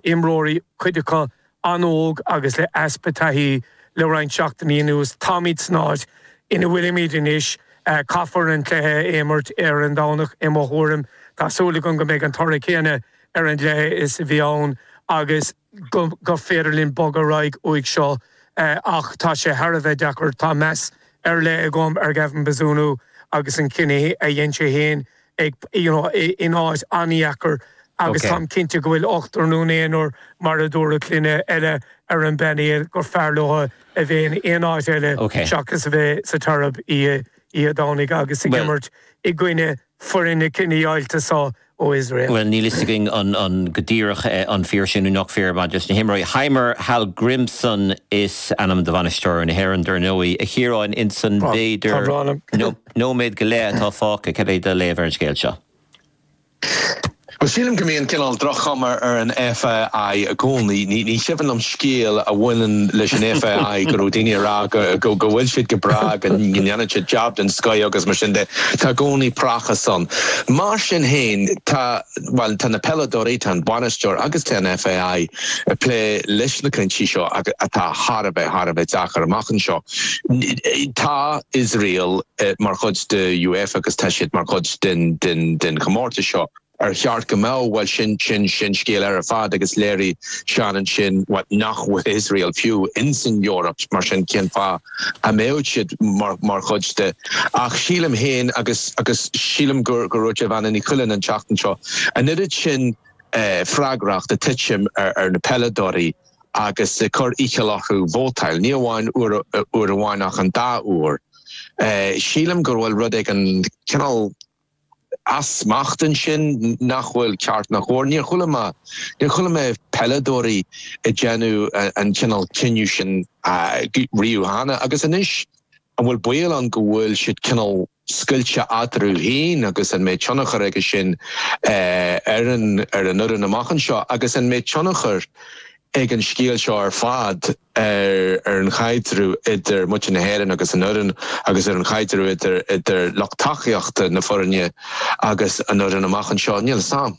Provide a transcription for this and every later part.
imreoirí, cuid acu an-óg agus le easpa taithí, le roinnt seachtainí anuas. Táimid san áit ina bhfuilimid anois. Caithfear an cluiche a imirt ar an Domhnach i mo thuairim. Tá súil agam go mbeidh an toradh céanna ar an gcluiche is a bhí ann agus gur féidir linn bogadh ar aghaidh uaidh seo ach tá sé thar a bheith deacair. Tá meas ar leith agam ar Gavin Bazunu agus an cinneadh a dhein sé féin. ag, you know, in áit an-dheacair agus táim cinnte go bhfuil ochtar nó naonúr, mar a dúradh, cheana eile ar an bpainéal gur fearr leo a bheith in aon áit eile seachas a bheith sa tSeirbia oíche Dhomhnaigh agus ag imirt i gcoinne foireann na cinedheighilte seo ó Iosrael. Bhuel, níl a fhios againn an go díreach an fíor sin nó nach fíor maidir leis na himreoirí. Heimir Hallgrimsson is ainm do bhainisteoir na hÉireann, dar ndóigh, a Chiaráin, insan b'fhéidir nó. nóiméad go leith atá fágtha. Cad é do léamh ar an scéal seo? Bhuel, sílim go mbíonn cineál droch-chuma ar an FAI i gcónaí. Ní chuimhin liom scéal a bhaineann leis an FAI go raibh daoine ag rá go bhfuil siad go breá, go ndéanann siad jab den scoith agus mar sin de. Tá i gcónaí praiseach ann. Mar sin féin, tá, bhuel, tá na peileadóirí, tá an bainisteoir agus tá an FAI ag plé leis na cúinsí seo atá thar a bheith, thar a bheith deacair amach anseo. Tá Iosrael mar chuid de UEFA agus tá siad mar chuid den, den, den chomórtas seo. Ar cheart go mbeadh? Bhuel, sin scéal eile ar fad agus léirigh Seán ansin nach bhfuil Iosrael fiú insan Eoraip, mar sin cén fáth a mbeadh siad mar chuid de? Ach sílim féin agus, agus sílim gur dhúirt Evanne Ní Chuilinn an tseachtain seo an oiread sin freagracht ag titim ar na peileadóirí, agus ag cur iachall orthu vótáil, ní amháin uair amháin ach an dá uair. Sílim go bhfuil rud éigin cineál as smacht ansin nach bhfuil ceart ná cóir. Níor chuala mé, níor chuala mé peileadóirí ag déanamh an cineál cinneadh sin riamh cheana agus anois an bhfuil baol ann go bhfuil siad cineál scoilte eatarthu féin agus an mbeidh tionchar aige sin ar an fhoireann amach anseo agus an mbeidh tionchar ag an scéal seo ar fad ar, ar an chaidreamh idir muintir na hÉireann agus an fhoireann agus ar an chaidreamh idir, idir lucht tacaíochta na foirne agus an fhoireann amach anseo? Níl 'sam.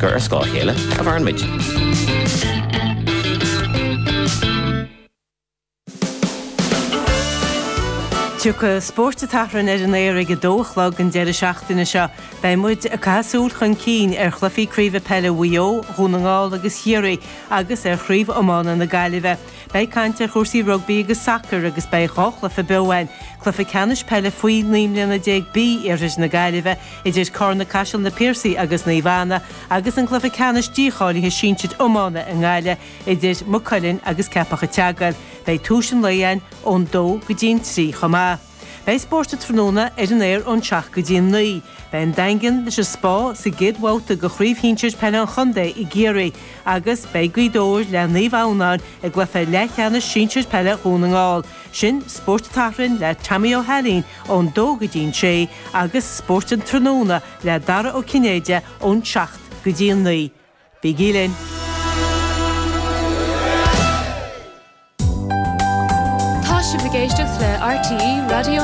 gur ar scáth a chéile a mhaireann muid. Tiocfaidh Spórt an tSathairn ar an aer ag a dó a chlog an deireadh seachtaine seo. Beidh muid ag caitheamh súil chun cinn ar chluichí craoibhe peile Mhaigh Eo, Dhún na nGall agus Chiarraí agus ar chraobh iomána na Gaillimhe. Beidh caint ar chúrsaí rugbaí agus sacair agus beidh dhá chluiche beo ann, cluiche ceannais peile faoi naoi mbliana déag B iarthair na Gaillimhe idir Carna Caiseal, Na Piarsaigh agus Naomh Anna agus an cluiche ceannais dícháilithe sinsir iomána i nGaillimh idir Maigh Cuilinn agus Ceapach an tSeagail. Beidh tús an lae ann ón dó go dtí'n trí chomh maith. Beidh spórt an tráthnóna ar an aer ón seacht go dtí an naoi. Beidh an Daingean leis an Spá sa gcéad bhabhta de Chraobh Shinsir Peile an Chontae i gCiarraí agus beidh Gaoth Dobhair le Naomh Adhamhnáin i gcluiche leathcheannais sinsir peile Dhún na nGall. Sin Spórt an tSathairn le Tommy Ó hAilín ón dó go dtí an sé agus Spórt an Tráthnóna le Dara Ó Cinnéide ón seacht go dtí an naoi. Bígí linn! Tá sibh ag éisteacht le RTÉ Raidió na.